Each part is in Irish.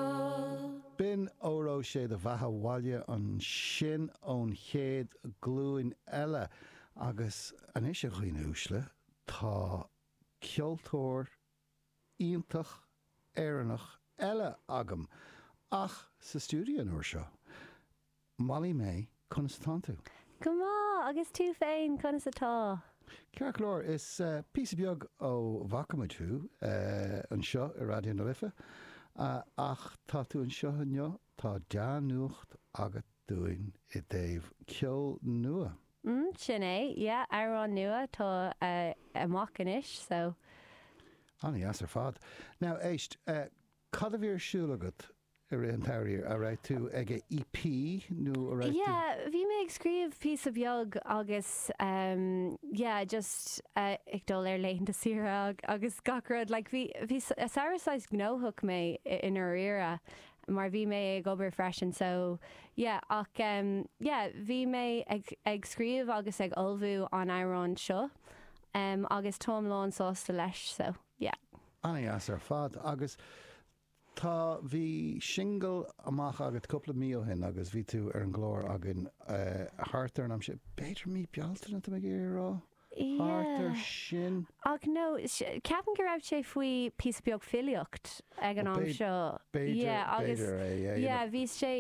Gael. B'in Óró Sé do Bheatha 'Bhaile ansin ón chéad glúin eile agus anois a dhaoine uaisle tá ceoltóir iontach Éireannach eile agam, ach sa stiúideo an uair seo. Molly May, conas atánn tú? Go maith, agus tú féin, conas atá? Ceart go leor, is píosa beag ó bhfaca muid thú anseo i Raidió na Life, ach tá tú anseo inniu, tá dea-nuacht agat dúinn i dtaobh ceol nua. Mm, sin é, yeah, amhrán nua, tá amach anois, so. Ana dheas ar fad. Now, éist, cad a bhí ar siúl agat Ar aon chaoi, a' raibh tú ag EP nó a' raibh tú. Yeah, bhí mé ag scríobh píosa beag agus ehm yeah just ag dul ar laethanta saoire agus gach rud like bhí, bhí samhradh saghas gnóthach mé i ndáiríre mar bhí mé ag obair freisin so yeah ach ehm yeah bhí mé ag, ag scríobh agus ag ullmhú an amhráin seo ehm agus táim lánsásta leis so yeah. Ana-dheas ar fad agus Tá, bhí singil amach agat cúpla mí ó shin agus bhí tú ar an gclár againn thart ar an am sin, b'fhéidir mí Bealtaine tá mé ag iarraidh a rá? Thart ar sin. Ach no, ceapaim go raibh sé fiú píosa beag níos luaithe ná an am seo. B'fhéidir, b'fhéidir é, yeah. Yeah, bhí sé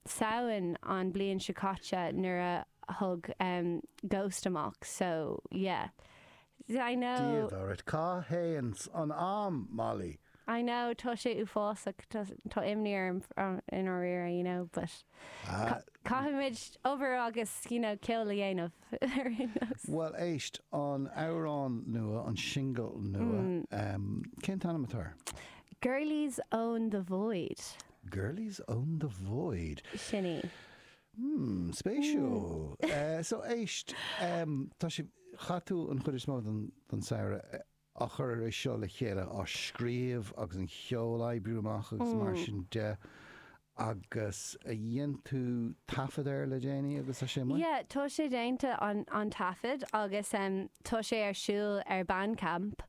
Samhain an bliain seo caite nuair a thug Ghost amach, so yeah. A Dhia. Cá dtéann an am, Molly? I know, tá sé uafásach, tá, tá imní orm i ndáiríre, you know, but ca- caithfimid obair agus, you know, ceol a dhéanamh ar aon nós. Bhuel, éist, an amhrán nua, an single nua, um, cén t-ainm atá air? Girlies own the void, Girlies Own the Void. sin í. Mmm, spéisiúil. So, éist, tá sé, chaith tú an chuid is mó den samhradh ag cur é seo le chéile, á scríobh agus an cheol á oibriú amach agus mar sin de, agus dhein tú taifead air le déanaí agus tá sé amuigh? Yeah, tá sé déanta an taifead agus tá sé ar siúl ar Bandcamp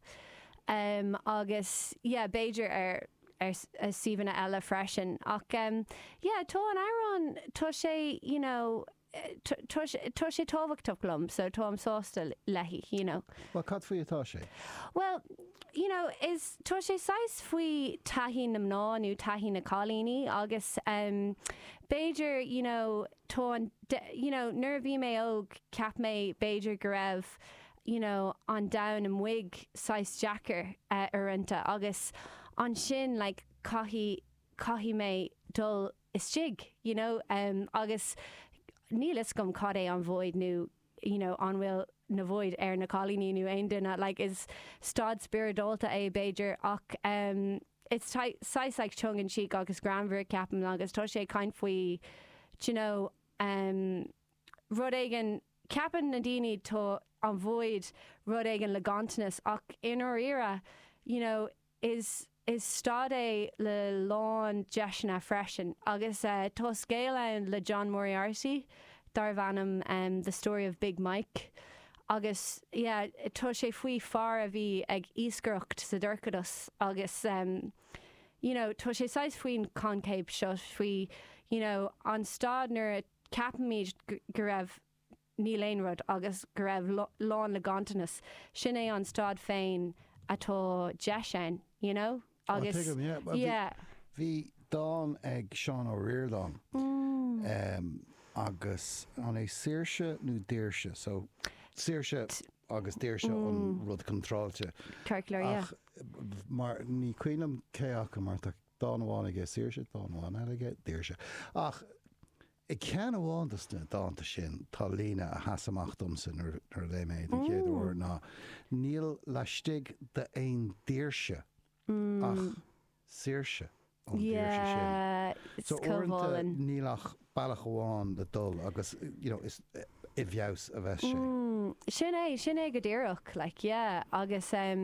agus yeah, b'fhéidir ar ar suíomhanna eile freisin ach yeah tá an amhrán tá sé you know tá sé tá sé tábhachtach liom so táim sásta léi you know. Bhuel cad faoi atá sé? Bhuel you know is tá sé saghas faoi taithí na mná nó taithí na cailíní agus ehm b'fhéidir you know tá an you know nuair a bhí mé óg ceap mé b'fhéidir go raibh you know an domhan amuig saghas deacair uaireannta agus ansin like caithfidh caithfidh mé dul istigh you know em agus níl fhios agam cad é an void nó you know an bhfuil an void ar na cailíní nó aon duine like is staid spioradálta é b'fhéidir ach em it's tá sé saghas like tongue in cheek agus greannmhar ceapaim agus tá sé ag caint faoi d'you know em rud éigin, ceapann na daoine tá an void rud éigin le ganntanas ach i ndáiríre you know is is staid é le lán deiseanna freisin agus eh tá scéal ann le John Moriarty darbh ainm em The Story of Big Mike agus yeah tá sé faoi fear a bhí ag iascaireacht sa dorchadas agus em you know tá sé saghas faoin coincheap seo faoi you know an staid nuair a Ceapaimid go raibh, níl aon rud, agus go raibh lán le ganntanas. Sin é an staid féin atá deis ann, you know? Agus. Tá, tuigim, yeah. Bhí, bhí dán ag Seán Ó Ríordáin agus an é Saoirse nó Daoirse? So, Saoirse agus Daoirse an rud contráilte. Circular, yeah. Ach mar, ní cuimhin liom cé acu mar tá. Dán amháin aige, Saoirse, dán amháin eile aige, Daoirse. Ach i gceann amháin de na dánta sin tá líne a sheas amach domsa nuair a léigh mé é den chéad uair ná Níl laistigh d'aon daoirse ach saoirse ón daoirse sin. Yeah, is comhbhall. Níl ach bealach amháin le dul agus you know is i bhfeabhas a bheas sé. Sin é, sin é go díreach like yeah agus.